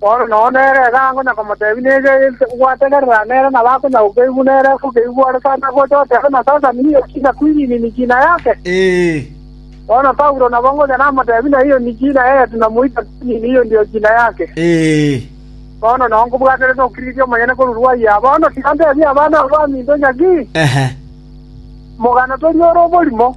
Paulo nonya nere egaango na komoteebia, Nege ase gwategerera nere na bakonya gokeigwa nere ase okeigwa ore sare agocha otebe na sasani nigo china kwinini niki na yake? Bono Paulo nabo ngocha namoteebie na iyo niki na yetu na moika kwinini iyo ndio china yake. Bono nonya nkobwaterete ogokirigiti omonyene korwa rwai aa. Bono tiga nteebie abana aba baminto ng'a ki? Mogano toria ore oborimo.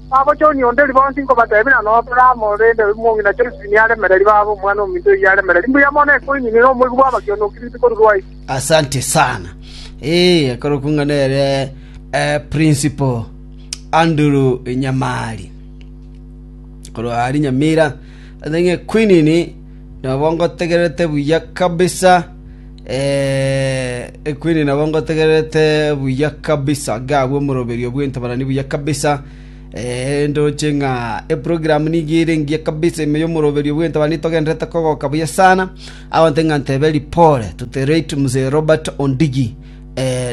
Bagochoonia onde ribonsi nkobateebia nano Aburaamu, rende omong'ina Josefu niye aremereri baabo omwana ominto oyio aremereri. Mbuya mono ekoinini na omoigu bw'abakionoki rituko rwaito. Asante sana. Ee, akarokwa ng'a nere eh, Principal Andrew Nyamari. Korwa ari Nyamira, ase ng'a Equinini nabo ngotegererete buya kabisa. Equini nabo ngotegererete buya kabisa, ngagwe omoroberio bw'entabarani buya kabisa. Ndoche ng'a eprogramu nigo ere engiya kabisa ime y'omoroberio bw'entabarani togendererete kogoka buya sana. Abanto ng'a ntebe ripore to the late Mzee Robert Ondigi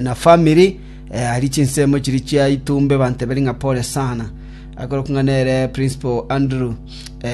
na family aria chinsemo chiria chia Itumbe banteberi ng'a pore sana. Akorokwa ng'a nere Principal Andrew